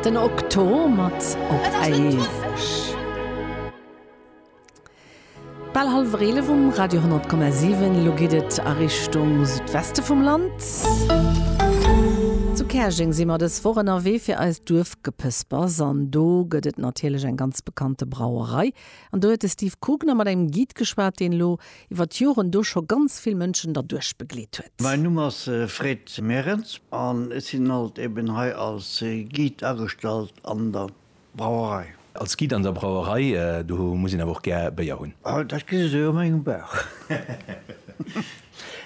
Den Okto mat Op éiweg. Bal hallwer 11 um Radio 10,7. Elo geet et a Richtung Südweste vum Land. Zu Käerjeng si mer dës Woch ënnerwee fir eist Duerfgepëspers. An do gëtt et natierlech eng ganz bekannte Brauerei. An do huet de Steve Kugner mat engem Guide geschwat, deen elo iwwer d'Joren do scho ganz vill Mënschen derduerch begleet huet. Mäin Numm ass Fred Merens an ech sinn haut eben hei als Guide agestallt an der Brauerei. Als Guide an der Brauerei, do muss een awer och gär Béier hunn. Oh, dat gesi se jo a mengem Bauch.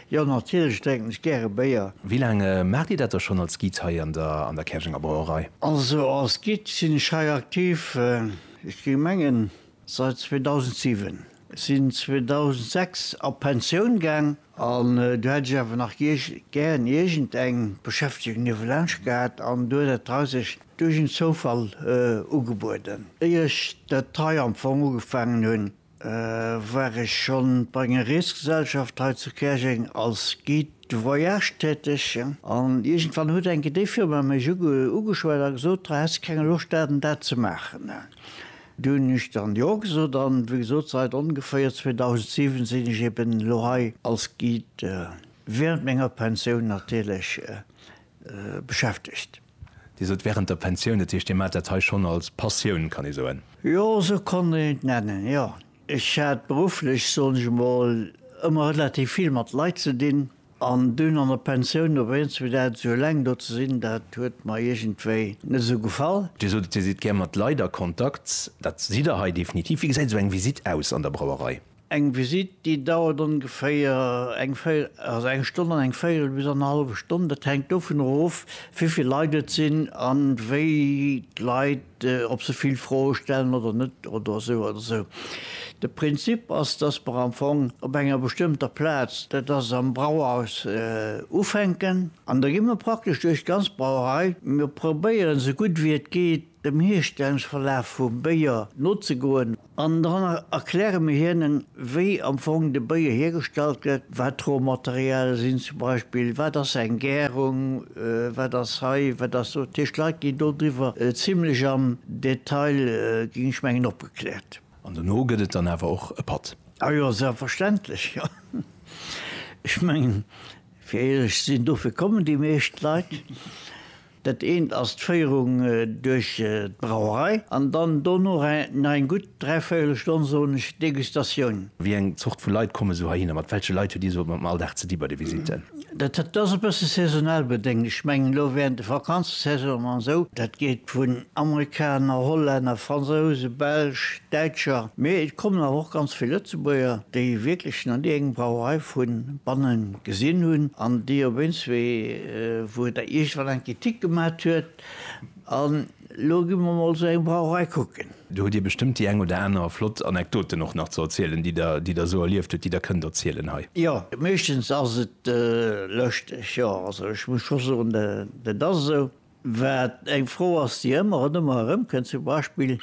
Jo, natierlech drénken ech gäre Béier. Wéi laang maacht Dir dat da schonn als Guide hei an der Käerjenger Brauerei? Also als Guide sinn ech hei aktiv, ech géing mengen, säit 2007. Sinn 2006 a Pensioun gaang an du hätt ech awer nach gären iergend eng Beschäftegung niewelaanscht gehat an du huet et hei sech duerch en Zoufall ugebueden. Éier ech dat hei am Fong ugefaangen hunn, war ech schonn bei enger Reesgesellschaft hei zu Käerjeng als Guide de voyage täteg an iergendwann huet enke déi Firma mech ugeschwat a gesot, Häss de keng Loscht dat an dat ze maachen? Dir hunn Iech dann Jo gesot an wéi gesot, seit ongeféier 2007 sinn ech eben elo hei als Guide während menger Pensioun natierlech beschäftegt. Dir sot während der Pensioun, dat heescht Dir maacht dat hei schonn als Passioun, kann ee soen? Jo, esou kann een et nennen, jo. Ech hat berufflech, soen ech emol, ëmmer relativ vill mat Leit ze dinn. An dunn an der Pensioun op eens fir dat esou eleng do ze sinn, dat huet mer iergendwéi net esou gefall. Dir sot et, Dir sidd gär mat Leit a Kontakt. Dat sidd Der hei definitiv. Wéi gesäit esou eng Visitt aus an der Brauerei? Eng Visitt, déi dauert ongeféier eng véi, also eng Stonn an eng véierel bis annerhallwe Stonn. Dat hänkt dovunner of, wéi vill Leit et sinn an wéi d'Leit, ob se vill Froe stellen oder net oder esou oder esou. De Prinzip ass, dass mer am Fong op enger bestëmmter Plaz, dat ass am Brauhaus, ufänken. An da gi mer praktesch duerch d'ganz Brauerei. Mir probéieren, esou gutt wéi et geet, dem Hierstellungsverlaf vum Béier nozegoen. An dann erkläre mir hinnen, wéi am Fong de Béier hiergestallt gëtt, wat d'Rohmaterialie sinn zum Beispill, wat ass eng Gärung, wat ass hei, wat ass do. Dat heescht, d'Leit ginn dodriwwer zimlech am Detail, ginn ech mengen, opgekläert. An dono gëtt et dann awer och e Patt? A jo, selbstverständlech, jo. Ech mengen, fir éierlech ze sinn, dofir kommen déi meescht Leit. Dat eent ass d'Féierung duerch d'Brauerei an dann dono nach eng gutt dräivéierel Stonn, soen ech, Degustatioun. Wéi eng Zort vu Leit komme sou heihinner? Mat welche Leit huet Dir sou am Alldag ze di bei de Visitten? Dat ass e bësse saisonal bedéngt. Ech mengen elo während de Vakanzesaisonen an esou, dat geet vun Amerikaner, Hollänner, Fransousen, Belsch, Däitscher, mee et kommen awer och ganz vill Lëtzebuerger, déi wierklech nach ni eng Brauerei vu banne gesinn hunn an déi op eens wéi, wou Der iergendwann eng Kritik gemat huet, an elo gi mer emol esou eng Brauerei kucken. Do hutt Dir bestëmmt déi eng oder aner flott Anekdoten och nach ze erzielen, déi Der, déi Der esou erlieft hutt, déi Der kënnt erzielen hei. Jo, meeschtens ass et lëschteg, jo. Also ech muss scho soen, dat ass esou. Wat eng Fro ass, déi ëmmer an ëmmer erëmkënnt, zum Beispill,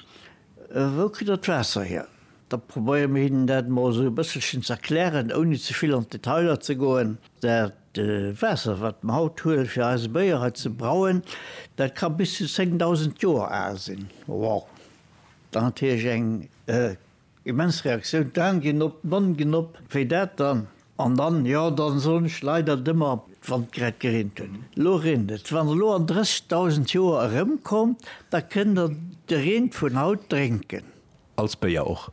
Wou kritt Der d'Waasser hier? Da probéiere mir hinnen dat emol esou e bësselchen ze erklären, ouni ze vill an d'Detailer ze goen. Dat Waasser, wat mer haut huelen, fir eise Béier hei ze brauen, dat ka bis zu 10.000 Joer al sinn. Wow! Dann hat Hiesch eng immens Reaktioun, d'Aen ginn op, d'Monn ginn op, Wéi dat dann? An dann, Jo, da soen ech leider et ëmmer, wann et grad gereent huet. Elo reent et. Wann Der elo an 30.000 Joer erëmkommt, da kënnt Der de Reen vun haut drénken. Als Béier och.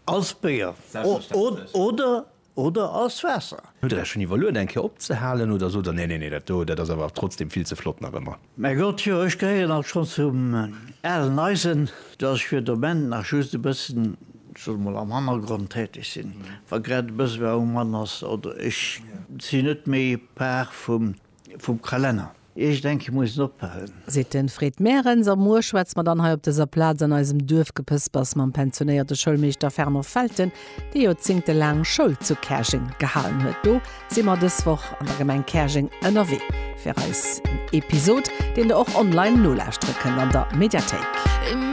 Als Béier oder oder als Waasser. Hutt der dat schonn iwwerluet eng Kéier opzehalen oder sot der, Nee, nee, nee, dat do, dat ass awer trotzdem vill ze flott nach ëmmer? Mä Gott, jo, ech gehéieren alt schonn zum alen Eisen, dat ech fir de Moment nach just e bëssen, ech soe mol, am Hannergrond täteg sinn, wa grad e bësse Raum an ass oder ech sinn net méi Par vum Vum Kralenner. Ech denke mussen oppassen. Seet den Fred Merens a muer schwätzt mer dann hei op dëser Plaz an eisem Duerfgepëspers mam pensionéierte Schoulmeeschter Fernand Felten, dee Joerzingte laang Schoul zu Käerjeng gehalen huet. Do si mer dës Woch an der Gemeng Käerjeng ënnerwee fir eis en Episod, deen der och online nolauschtere kënnt an der Mediathéik.